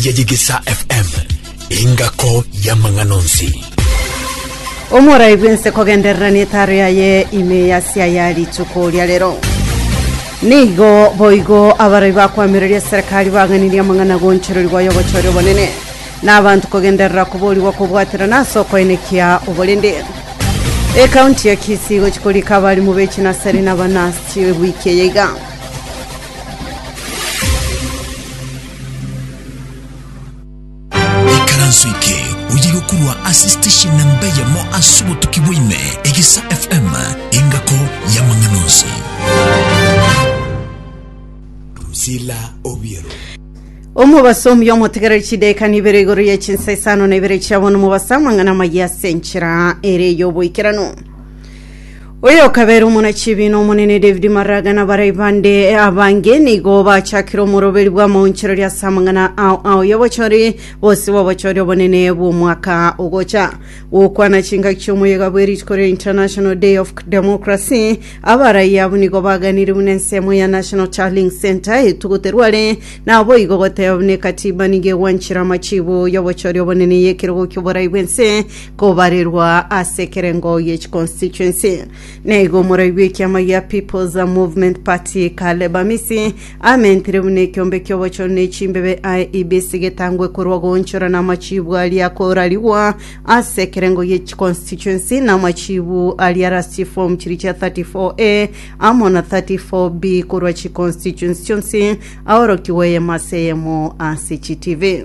ya Yegesa FM, engako y'amang'ana onsi. Omorai bwense kogenderera netaro yaye ime yasia ya rituko ria rero nigo boigo abarai bakwamireria serikali baganirie amang'ana gonchorori gwaye ogochoria obonene na abanto kogenderera koborigwa kobwaterana ase okoenekia oborende ekaunti ya kisi igochi korika abarimu b'echinasari na abanasi wiki eye iga Ikaranso eke oye gokorwa ase station namba eyemo ase obotuki bwaime, Egesa FM, engako y'amang'ana onsi. Drusilla Obiero. omobaso omuya omotegereri chidaika nibere igoro ye chinsa isano na ibere chia bono mobaso amang'ana amaya ase enchera ere y'oboikeranu oyokabera omonachibi na omonene david maraga na barai bande abange nigo bachakire omoroberi bw'amaonchereri ase amang'ana ao ao y'obochori bose bw'obochori obonene bw'omwaka ogocha gokwana chingaki chi'omoyega bw'erituko ria international day of democracy abarai abo nigo baganire buna ensemo ya national charling center etugoterwa are naboigo goteba buna ekatiba nigo egwanchire amachibo y'obochori obonene y'ekerogo ki'oborai bw'ense kobarerwa ase ekerengo y'echi constituency. Naigo omorai bw'ekiama gia People's Movement Party Caleb Amisi amentire buna ekiombe ki'obochori ne chimbebe aye IEBC getangwe korwa goonchora na amachiibu aria akorarigwa ase ekerengo y'echi constituency na amachiibu aria arastie form chiria chia 34A amo na 34B korwa chiconstituency chionsi aorokigwe eyemo ase eyemo ase chi TV.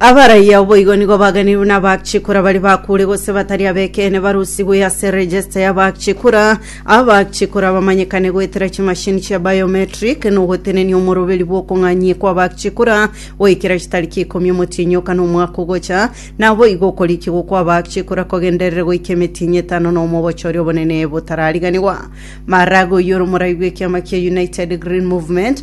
Abaraiyo boigo nigo bagani nabachikura bari bakure gose batari abekene barusigwe ase regesta y'abachikura. Abachikura bamanyekane goetera chimashini chia biometric na ogotenenia omoroberi bw'okong'anyia kw'abachikura goikera chitariki ikomi omotienyi oka na omwaka ogocha. Naboigo okorikigwa kw'abachikura kogenderere goika emetienyi etano na omo obochori obonene botarariganigwa. Maraga oyio ore omorai bw'ekiama kia United Green Movement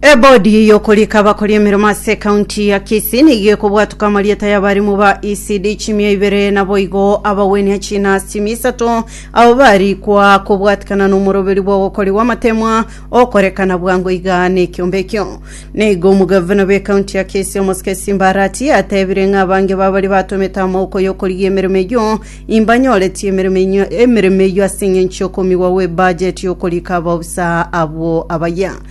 Ebodi y'okorika abakori emeremo ase ekaunti ya Kisii nigo ekobwatuka amarieta y'abarimu ba ECD chimia ibere naboigo abagwenia china chimia isato abo barikwa kobwatikana nomoroberi bw'ogokori gw'amatemwa okorekana bwango iga nekiombe ekio. Nigo omogavana bw'ekaunti ya Kisii omosike Simba Arati atebire ng'a abange babari batomete amaboko y'okorigia emeremo eyio imbanyoretie emeremo enyio- emeremo eyio ase eng'encho y'okomigwa gw'ebudget y'okorika abaofisa abwo abayia.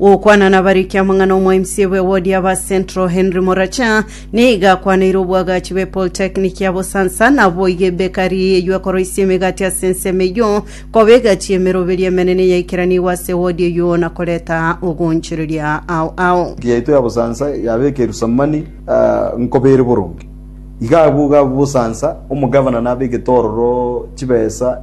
Gokwana nabariki amang'ana omwaimisi bwe wodi ya ba Central Henry Moracha nigo akwaneire obwagachi bwe Polytechnic ya Bosansa na boigo ebekari eyio ekoroisia emegati ase ensemo eyio koba egachi y'emeroberi emenene yaikeranigwe ase wodi eyio na koreta ogoonchoreria ao ao. Eki yaito ya Bosansa yaba ekerusamani nkobere boronge. Iga abwo iga abwo Bosansa, omogavana nabe egetororo chibesa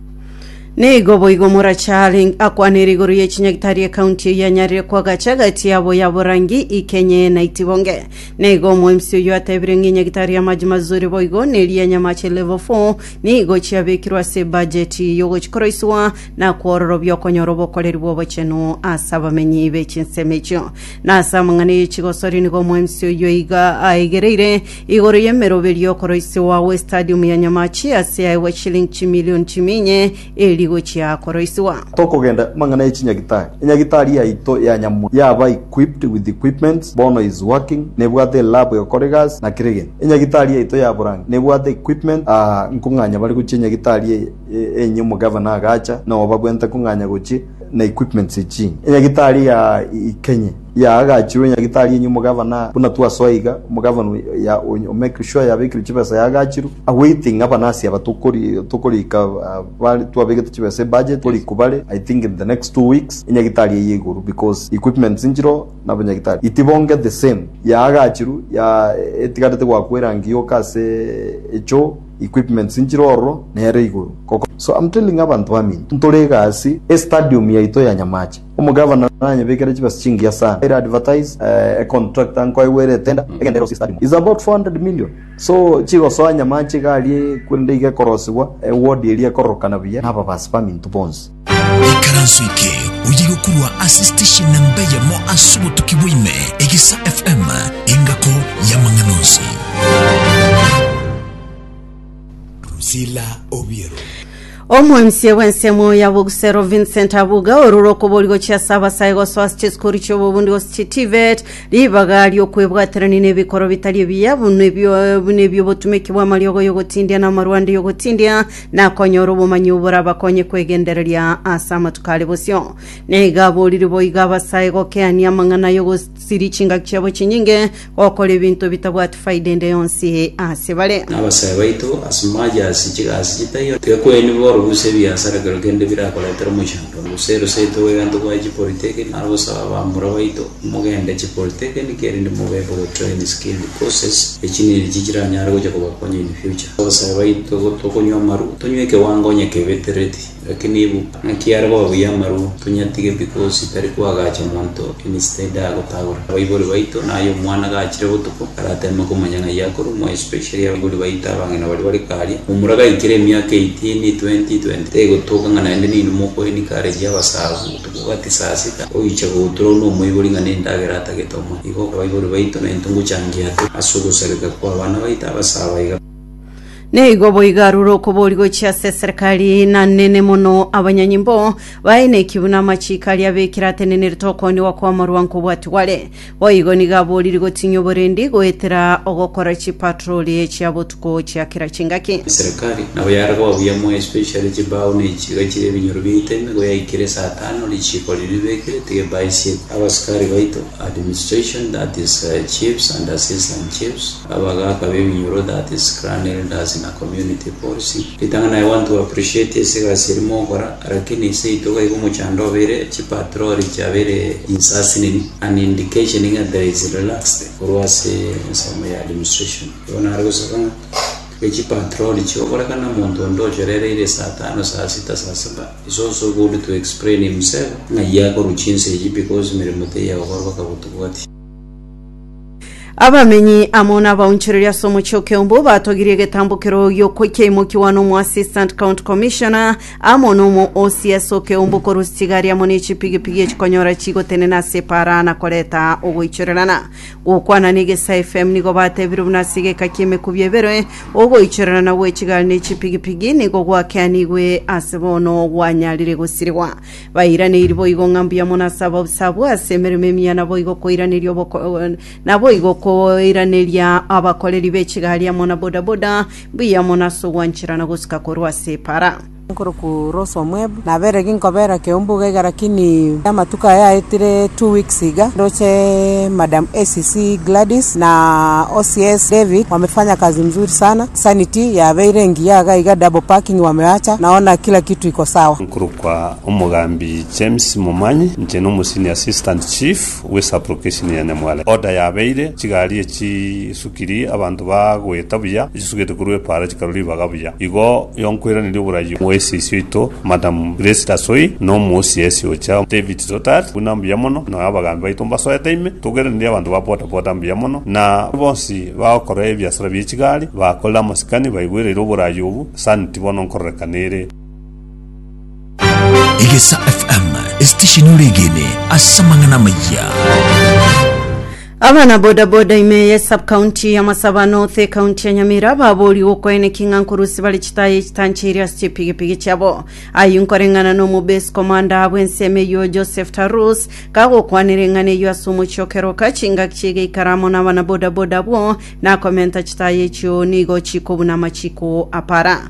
Nigo boigo Moracha arenge akwanire igoro ye chinyagitari ekaunti eye anyarire kwagacha egati yabo ya borangi ikenye na itibonge. Nigo omoemsi oyio atebire ng'a enyagitari y'amache mazuri boigo neri ya nyamache level 4 nigo chiabekirwe ase ebajeti yogochikoroiswa na kwororobia okonyora obokoreri bw'obochenu ase abamenyi be chinsemo echio. Na ase amang'ana ye chigosori nigo omoemsi oyio iga aegereire Igoro y'emeroberio okoroisigwa gw'Estadium ya Nyamachi ase yaegwa chiliing chimilion chiminye eeri gochia koroisigwa. Tokogenda mang'ana ye chinyagitari. Enyagitari yaito ya nyamura yaba equipped with equipments, bono is working, nebwate elab egokora egasi na kera egento. Enyagitari yaito ya borange nebwate equipment aa nkong'anya bare gochia enyagitari eye enye omogavana agacha na obabuenta nkong'anya gochia na equipments eching'e. Enyagitari ya ikenye. yaagachirwe Nyagitari enywe omogavana buna twasoa iga, omogavana oya o-make sure yabekirwe chibesa yaagachirwe, awaiting aba nasi aba tokori tokorika bare twabegete chibesa ebudget tokori kobare I think in the next two weeks enyagitari eye iguru because equipments nchireo na abanyagitari itibonge the same yaagachirwe ya etigarete goakwa erangi yoka ase echoo equipments nchire ororo nere iguru so am telling abanto baminto ntore egasi estadium yaito ya Nyamache. Omogavana nanyebekere chibesa chingiya sana. I advertise a contractor nkoegwere etender egende erosie study mob. It's about 400 million. So chigosoa nyamache iga aria korende iga ekorosibwa e ward eria ekororokana buya na ababasi baminto bonsi. Ikaranso eke oye gokurwa ase station namba eyemo ase obotuki bwa ime, Egesa FM, engako y'amang'ana onsi. Drusilla Obiero. Omoemisi bw'ensemo ya Bogusero Vincent Abuga orure okobori gochia ase abasae gosoa ase chisukuru chi'obobundi gose chitivet ribaga ri'okwebwaterania n'ebikoro bitari ebiya buna ebio- buna ebi'obotumeki bw'amariogo y'ogotindia na amarwande y'ogotindia na konyora obomanyi oborabakonye kwegendereria ase amatuko are bosio. Nigo aborire boigo abasae gokeania amang'ana y'ogos- Siri chingaki chiabo chinyinge, gokora ebinto bitabwati faida ende yonsi ase bare. Nabasae baito ase majasi chigasi chitaiyo gekweini bore gose ebiasara kero kende birakoretera omochando gose eroseto gwegento gwaye chipolitiki naro gosaba abamura baito mogende chipolitikini kerinde mobekwe go train skilled courses echiniri echi chiranyare gocha kobakonya in future abasae baito gotokonywa amaru tonywe ekewango onye kebetereti Lakini ibu, naki are koba buya amarwa, tonyatige pi gose tari koagacha monto emisita ende agotagora abaibori baito, na aye omwana gachire botuko arateme komanya ng'ai akorumwa, especially abaibori baito abang'ina baria bare karia, momura gaikire emiaka eighteen, twenty, twenty three gotoka ng'a naende nainwe moko encourage abasago botuko gati saa sita goicha gotura onde omoibori ng'a nendagera atagete omorero. Igo abaibori baito naintwe ngochangia ase ogosareka kwa abana baito abasaaba iga. Nigo boigo arure okobori gochia ase eserekari, na nene mono abanyanyimbo baye na ekibu na amachiiko aria abekire atenenerete okooniwa kw'amarwanko obwati bware. Boigo nigo abooriri gotinyia oborendi goetera ogokora chipatroli chia botuko chia kera chingaki. Eserekari nabo yare koba buya moyo especially chibao na echiga chire ebinyoro biaito emego yaikire saa tano richiiko riria ribekire tiga baisiete abasikari baito administration that is chiefs and assistant chiefs Abagaaka b'eminyoro, that is clan elders na community boards, ritang'ana i want to appreciate ase egasi eria mogokora, lakini seito gaiga omochando obeire, chi patrol chiabeire insasinini, an indication ng'a there is relaxed korwa ase ensemo ya administration. Igo nare gosoka ng'a ri chi patrol chio okore kana omonto onde ochorereire saa tano, saa sita, saa saba is also good to explain himself ng'ai akorwa chinsa echi because emeremo teiya gokorwa baka botuko gati. Abamenyi amo n'abaonchoreria ase omochie o Keumbu batogirie egetambo keroyio ko- kiaimokiwa n'omoassistant county commissioner amo nomo OCS o Keumbu korwa chitigari amo ne chipigipigi echikonyora chigotenena ase epaara na koreta ogoichorerana. Gokwana na Egesaa FM nigo batebire buna ase egeka ki'emekubi ebere ogoichorerana gwe chigari ne chipigipigi nigo gwakeanigwe ase bono gwanyarire gosirigwa. Bairaneiri boigo ng'a mbuya mono ase ababisa-abwo ase emeremo emiya naboigo koiraneria oboko naboigo koiraneria abakoreri be chigari amo na bodaboda mbuya mono ase ogwancherana gosika korwa ase epara. Nkorokwa Rose Omwebo, nabere ginkobeera Keumbuga iga lakini amatuko aya aetire two weeks iga ndoche Madam ACC Gladys na OCS David wamefanya kazi mzuri sana, sanity yabeire engiya iga iga double parking wameacha naona kila kitu iko sawa. Korwa kwa omogambi James Momanyi, inche n'omosenior assistant chief bwe sub-location ya Nyamwale. Order yabeire, chigari echi isukiri abanto bagoeta buya, echisugete korwa epaara chikarwa ribaga buya. Igo yonkweraneri oborai bwa esisi oito Madam Grace Tasoi na omosiesi ocha David Totari buna mbuya mono, na abagambi baito mbasoete ime, togweraneri abanto ba boda boda mbuya mono, na bonsi bagokora ebiasara bie chigari, bakorire amasikani, baigwereire oborai obu, sani tibono nkororeka nere. Egesa FM, esitesheni oregene ase amang'ana amayia. abana bodaboda ime ye subcounty ya masaba north ekaunti ya nyamira babori gokoene king'a nkorusi bare chitaye chitanchiri ase chipigipigi chiabo ayu nkoreng'ana na omobase komanda bw'ensemo eyio joseph tarus kagokwanera eng'ana eyio ase omochie okeroka chingaki chigeikara amo na abana bodaboda abwo nakomenta chitaye echio nigo chikobuna amachiko apara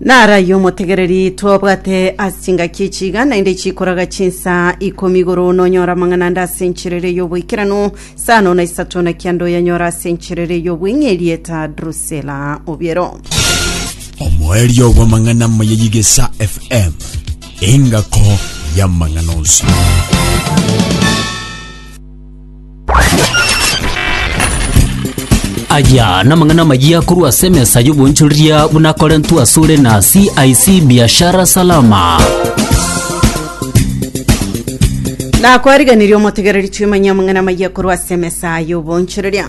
Narayie omotegereri twabwate ase chingaki echiga naende chikoraga chinsa ikomi igoro nonyora amang'ana ande ase encherere y'oboikeranu saa nono na isato na kianda oyanyora ase encherere y'obweng'e erieta Drusela Obiero. omoerio bw'amang'ana amaya y'egesa fm engako y'amang'ana onsi Aya namang'ana amayia korwa ase emesa y'obonchoreria buna akorentwe asore na CIC Biashara Salama. nakwariganirie omotegereri twimanye amang'ana amaya korwa ase emesa y'obonchoreria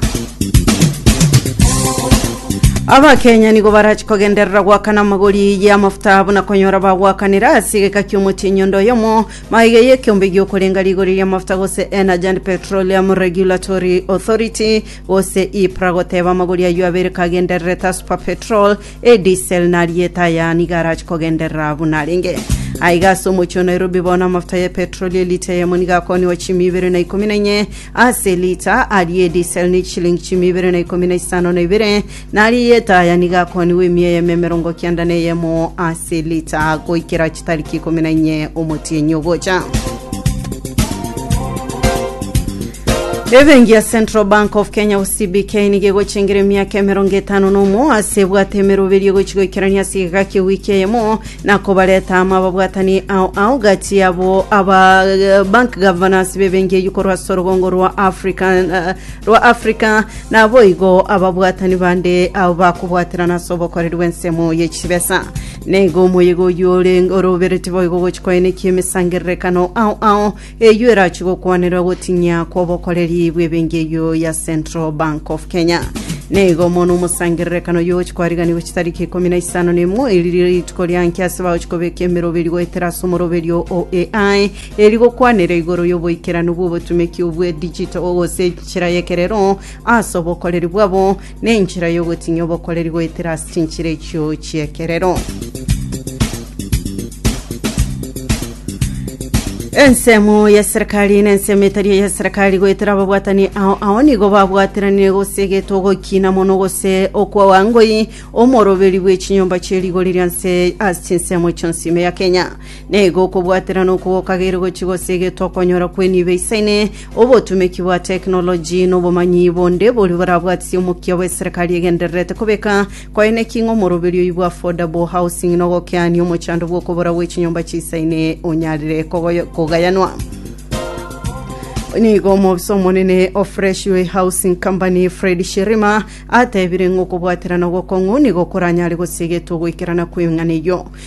abakenya nigo barachi kogenderera gwakana amagori y'amafuta buna konyora bagwakanera ase egeka ki'omotienyi onde oyomo Maiga y'ekeombe gi'okorenga rigori ri'amafuta gose Energy and Petroleum Regulatory Authority gose EPRA goteba amagori ayio abere kagendererete ase Super Petrol, eDiesel na ariete aya nigo arache kogenderera abwo narenge. Aiga ase omochie o Nairobi bono amafuta ya epetroli elita eyemo nigo akoniwa chimi ibere na ikomi na inye ase elita, aria eDiesel ni chilingi chimi ibere na ikomi na isano na ibere, Na rieta ya nigo akoonigwe emiya eyemo emerongo kenda na eyemo ase lita, goikera chitariki ikomi na inye omotienyi ogocha. Ebenki ya Central Bank of Kenya au CBK nigo egochengera emiaka emerongo etano na omo ase ebwate emeroberio egochi goikerania ase egeka kia ewiki eyemo na kobareta amo ababwatani ao ao gati yabo aba eh, bank governors b'ebenki eyio korwa ase orogongo rwa African eh, Rwa Africa, naboigo ababwatani bande abo bakobwaterana ase obokoreri bw'ensemo ye chibesa. Naigo omoyega oyio ore orobereti boigo gochi koenekia emesangererekano ao ao eyio erachi gokwanerera gotinyia kw'obokoreri bw'ebengi eyio ya Central Bank of Kenya. Naigo mono omosangererekano oyio ogochi kwariganiwa chitariki ikomi na isano na imwe eriri rituko ria nki ase bagochi kobeka emeroberio goetera ase omoroberio o AI Eri gokwanera igoro y'oboikeranu bw'obotumeki obwe digital gose enchera y'ekerero ase obokoreri bwabo, na enchera y'ogotinyia obokoreri goetera ase chinchera echio chi'ekerero. Ensemo ya serikali na ensemo etari eya serikali goetera ababwatani ao ao nigo babwateranire gose egetwe ogokiina mono gose okwawa ngoi omoroberi bw'echinyomba chie rigori rianse ase chinsemo chionsi ime ya Kenya. Nigo okobwatera na okogokagera gochia gosegetwa okonyora kw'enibo eisaine, obotumeki bwa tekinoloji, na obomanyi bonde boria borabwatisie omokia bw'eserekari egendererete kobeka koyene ki ng'a omoroberi oyio bwa affordable housing na ogokeania omochando bw'okobora gwe chinyomba chisaine onyarire kogoyo- kogayanwa. Nigo omobisa omonene o Fresh Way Housing Company Fred Shirima atebire ng'a okobwatera na ogokong'u nigo koranyare gosegetwa ogoikerana kw'eng'ana eyio.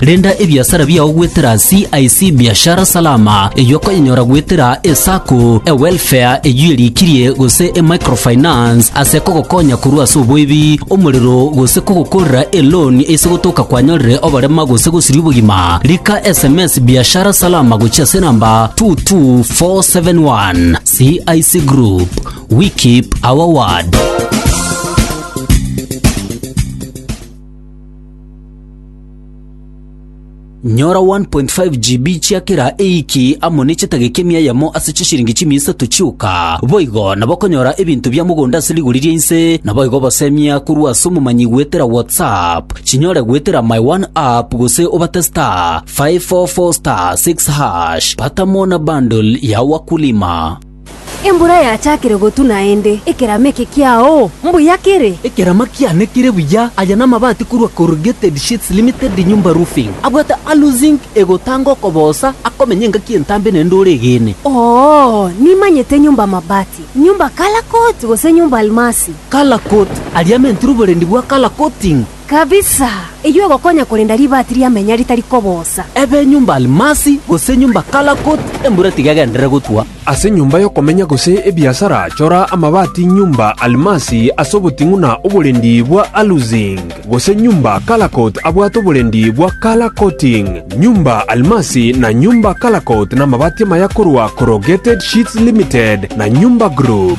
Renda ebiasara biao goetera CIC Biashara Salama, eyio okonyenyora goetera eSacco, eWelfare eyio erikirie, gose eMicrofinance ase kogokonya korwa ase oboibi, omorero, gose kogokorera eloan ase gotoka kwanyorire oborema gose gosiria obogima. Rika sms Biashara Salama gochia ase enamba 22471. CIC Group, we keep our word. Nyora 1.5 GB chia kera ewiki amo ne chetageka emia eyemo ase chisiringi chimia isato chioka. Boigo nabokonyora ebinto bia mogondo ase rigori ria inse, naboigo obasemia korwa ase omomanyi goetera WhatsApp. Chinyore goetera My One App gose obate *544*6#. Pata Mona Bundle ya Wakulima. Embura yachakire gotu naende, ekerama eke kiao mbuya kere? Ekerama kiane kere buya. Aya namabati korwa Corrugated Sheets Limited Nyumba Roofing. Abwate Alu Zinc egotanga okoboosa akomenya engaki entambe naende ore egene. Oo, nimanyete Nyumba Mabati, Nyumba Color Coat gose Nyumba Almasi. Color Coat, aria amentire oborendi bwa color coating. Kabisa! Eyio egokonya korenda ribaati ria menya ritari kobosa. Ebe enyomba almasi, gose enyomba kalakut, embura tigegenderere gotwa. Ase enyomba y'okomenya gose ebiasara, chora amabaati nyomba almasi ase oboting'una oborendi bwa alusing, gose nyomba kalakut abwate oborendi bwa color coating. Nyomba almasi na nyomba kalakut namabaati amaya korwa Corrugated Sheets Limited na Nyomba Group.